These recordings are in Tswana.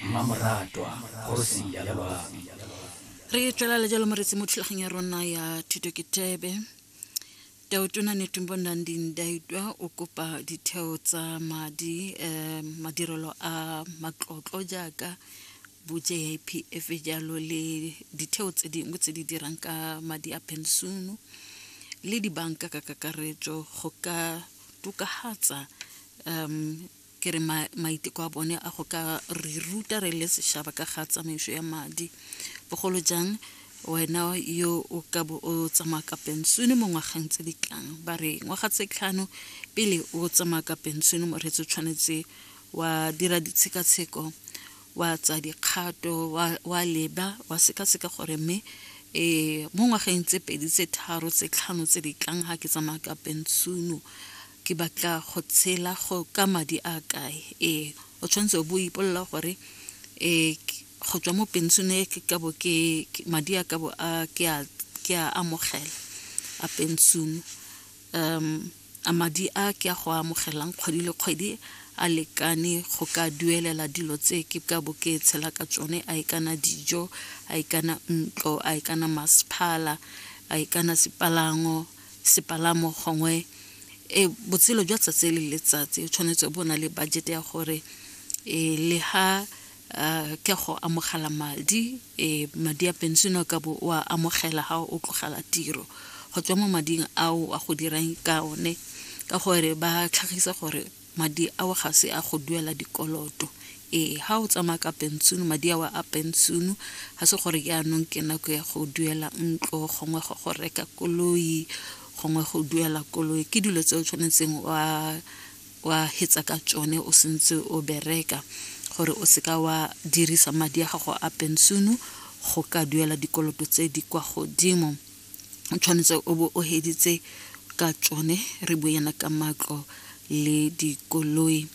mmamoratwa kgosi ya lelwami re tlala le jalo moretsi mo thulageng ya rona ya thuto ke tebe taotona netumbo nandi ndaitwa o kopa ditheo tsa madi um madirelo a matlotlo jaaka bo-jipf jalo le ditheo tse dingwe tse di dirang ka madi a pensiono le dibanka ka kakaretso go ka tokahatsa um Ke re maiteko a bone a go ka re ruta re le sešaba ka ga tsamaiso ya madi, bogolo jang wena yo o ka bo o tsamaya ka pensone mo ngwageng tse di tlang. Ba re ngwaga tse tlhano pele o tsamaya ka pensone, moreetsi o tshwanetse wa dira ditshekatsheko wa tsa dikgato wa leba wa sekaseka gore mme um mo ngwageng tse pedi tse tharo tse tlhano tse di tlang ga ke tsamaya ka pensono Ke batla go tshela go ka madi a kae? Ee, o tshwanetse o bo ipolola gore um go tswa mo pension e ke kabo ke madi a kabo a ke a ke a amogela a pension um a madi a ke a go amogelang kgwedi le kgwedi a lekane go ka duelela dilo tse ke ka bo ke tshela ka tsone a e kana dijo a e kana ntlo a e kana masephala a e kana sepalango sepalamo gongwe e botshelo jwa tsatsi le letsatsi o tshwanetse bo na le budget ya gore e le ha ke go amogela madi e madi a pension ka bo wa amogela ha o tlogela tiro go tswa mo mading ao a go dirang ka one ka gore ba tlhagisa gore Madi ao ga se a go duela dikoloto. Ee, ha o tsamaya ka pension, madi ao a pension ga se gore yaanong ke nako ya go duela ntlo gongwe go go reka koloi gongwe go duela koloi ke dilo tse o tshwanetseng wa wa hetsa ka tsone o sentse o bereka gore o seka wa dirisa madi a gago a pension go ka duela dikoloto tse di kwa godimo o tshwanetse o bo o heditse ka tsone re bue yana ka matlo le dikoloi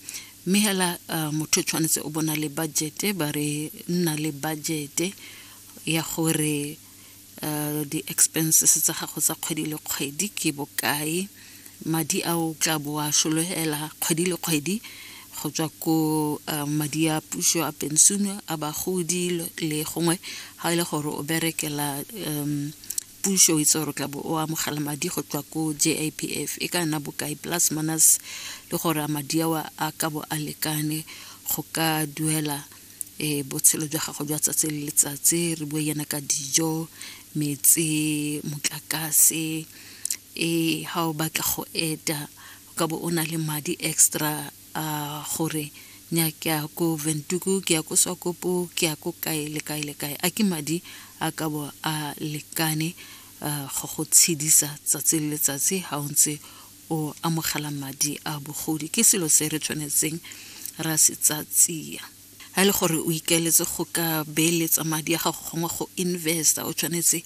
mme hela uh, motho tshwanetse o bona le budgete ba re nna le budgete ya gore uh, di-expenses tsa gago tsa kgwedi le kgwedi ke bokae Madi ao tla bo a solohela kgwedi le kgwedi go tswa ko madi a puso a pensione a bagodi le gongwe ga e le gore o berekela puso itse gore tla bo o amogela madi go tswa ko JIPF e ka nna bokae plus minus le gore a madi ao a ka bo a lekane go ka duela botshelo jwa gago jwa tsatsi le letsatsi re bue yana ka dijo metsi motlakase Ee, ha o batla go eta, o ka bo o na le madi extra a gore nya ke ya ko Ventuku, ke ya ko Swakopo, ke ya ko kae le kae le kae. A ke madi a ka bo a lekane go go tshedisa tsatsi le letsatsi ha o ntse o amogela madi a bogodi? Ke selo se re tshwanetseng ra se tsatsia. Ha e le gore o ikaeletse go ka beeletsa madi a gago gongwe go investa, o tshwanetse